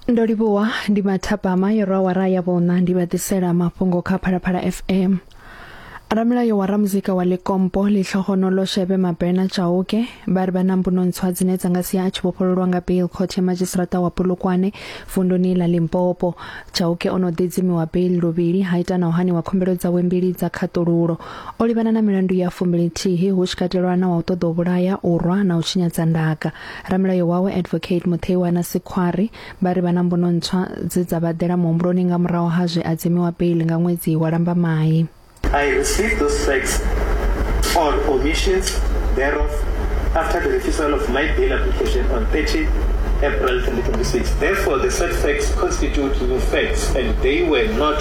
ndo livhuwa ndi mathapama yo rwa wara ya vhona ndi vha ḓisela mafhungo kha phalaphala fm ramulayo wa ramuzika wa likompo litlhogonolo shebe mabena chauke ba ri vha na mbuno ntswa dzine dza nga sia a tshi vhofhololwa nga bail court ya madzhisiṱiraṱa wa polokwane vunduni ḽa limpopo chauke o no ḓidzimiwa bail luvhili ha ita na u haniwa khumbelo dzawe mbili dza khaṱululo O livhana na milandu ya fumbilithihi hu tshi katelwa na wa u ṱoḓa u vhulaya, u rwa na u tshinyadza ndaka. Ramulayo wawe Advocate Mutheiwana Sikhwari vha ri vha na mbuno ntswa dze dza vha ḓela muhumbuloni nga murahu ha zwe a dzimiwa beiḽi nga ṅwedzi wa Lambamai. I receive those facts or omissions thereof after the refusal of my bail application on 30 April 2026. Therefore, the said facts constitute new facts and they were not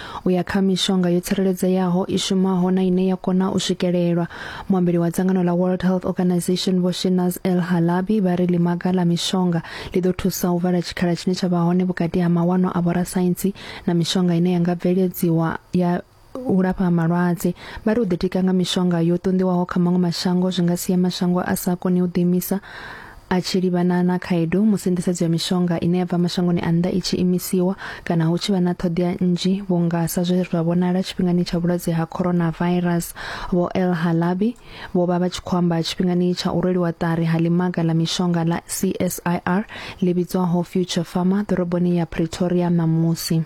u ya kha mishonga yo tsireledzeaho i shumaho na ine ya kona u swikelelwa. Muambeli wa dzangano ḽa World Health Organization Vho Shinaz El Halabi vha ri ḽimaga ḽa mishonga ḽi ḓo thusa u vala tshikhala tshine tsha vha hone vhukati ha mawanwa a vhorasaintsi na mishonga ine ya nga bveledziwa ya u lafha malwadze. Vha ri u ḓitika nga mishonga yo ṱunḓiwaho kha maṅwe mashango zwi nga sia mashango a sa koni u ḓiimisa a tshi livhana na khaedu musi nḓisedzo ya mishonga ine ya bva mashangoni a nnḓa i tshi imisiwa kana hu tshi vha na ṱhoḓea nnzhi vhunga sa zwe zwa vhonala tshifhingani tsha vhulwadze ha coronavirus vho El Halabi vho vha vha tshi khou amba tshifhingani tsha u rweliwa ṱari ha limaga ḽa mishonga ḽa CSIR ḽi vhidzwaho Future Pharma ḓoroboni ya Pretoria ṋamusi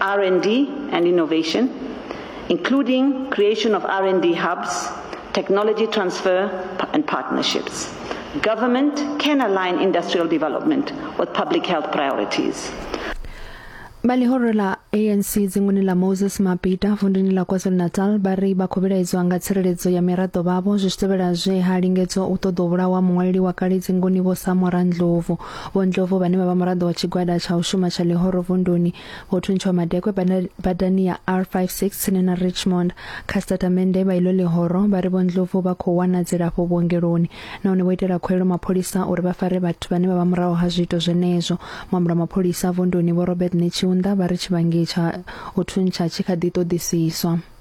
R&D and innovation, including creation of R&D hubs, technology transfer, and partnerships. Government can align industrial development with public health priorities. vha ḽihoro ḽa anc dzinguni ḽa moses mapita vunduni ḽa kwazulu-natal vha ri vha khou vhilaedzwa nga tsireledzo ya miraḓo vhavho zwi tshi tevhela zwe ha lingedzwa u ṱoḓa u vhulawa muṅwaleli wa kale dzinguni vho samora ndlovu Vho Ndlovu vhane vha vha muraḓo wa tshigwada tsha u shuma tsha ḽihoro vunduni vho thuntshiwa madekwe badani ya R56 tsini na Richmond kha sitatamennde vha iḽo ḽihoro vha ri Vho Ndlovu vha khou wana dzilafho vhuongeloni nahone vho itela khuwelo mapholisa uri vha fare vhathu vhane vha vha muraho ha zwiito zwenezwo. Muambula mapholisa vunduni Vho Robert Netshiunda vha ri tshivhangi tsha u thuntsha tshi kha ḓi ṱoḓisiswa.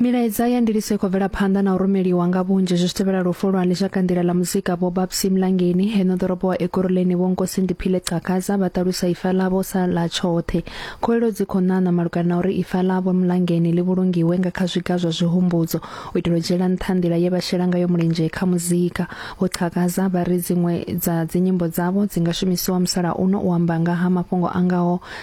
milaedza ya ndiliso i khou bvela phanḓa na u rumeliwa nga vhunzhi zwi tevhela lufu lwa ndisha kandila ḽa muzika vho babsi mlangeni heno ḓorobo wa ekuruleni vho nkosi ndiphile cakaza vha ṱalusa ifa ḽavho sa ḽa tshoṱhe khoelo dzi khou ṋaṋa malugana na uri ifa ḽavho mlangeni ḽi vhulungiwe nga kha zwiga zwa zwihumbudzo u itela u dzhiela nṱha nḓila ye vha shela ngayo mulenzhe kha muzika vho cakaza vha ri dziṅwe dza dzinyimbo dzavho dzi nga shumisiwa musalauno u amba nga ha mafhungo a ngaho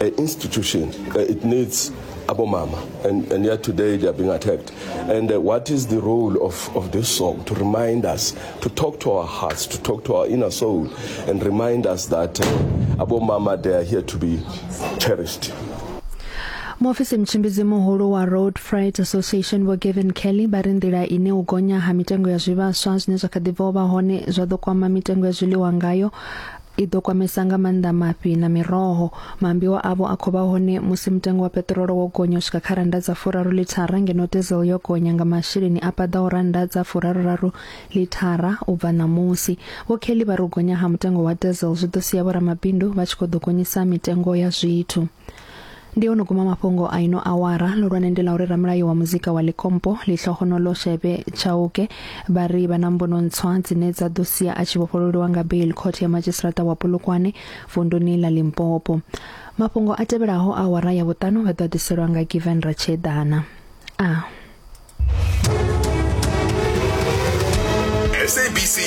an institution. Uh, it needs abomama and, and yet today they are being attacked and uh, what is the role of, of this song to remind us to talk to our hearts to talk to our inner soul and remind us that uh, abomama they are here to be cherished muofisi mtshimbidzi muhulu wa road freight association vho gavin kelly vha ri nḓila ine u gonya ha mitengo ya zwivhaswa zwine zwa kha ḓi bva u vha hone zwa ḓo kwama mitengo ya zwiḽiwa ngayo i ḓo kwamesa nga maanḓa mafhi na miroho. Maambiwa avho a khou vha hone musi mutengo wa peṱirolo wo gonya u swika kha rannda dza furaru lithara ngeno diesel yo gonya nga masheleni a paḓaho rannda dza furaruraru lithara u bva ṋamusi. Vho Kelly vha ri u gonya ha mutengo wa diesel zwi ḓo sia vhoramabindu vha tshi khou ḓo gonyisa mitengo ya zwithu. Ndi ono guma mafhungo a ino awara. Ḽihulwane ndi ḽa uri ramulayo wa muzika wa Ḽikompo, Ḽihlohonolo Shebe Chauke, vha ri vha na mbuno ntswa dzine dza ḓo sia a tshi vhofhololiwa nga bail khothe ya madzhisiṱaraṱa wa Polokwane vunduni ḽa Limpopo. Mafhungo a tevhelaho a awara ya vhuṱanu vha ḓo a ḓiselwa nga Given Ratsheḓana. A.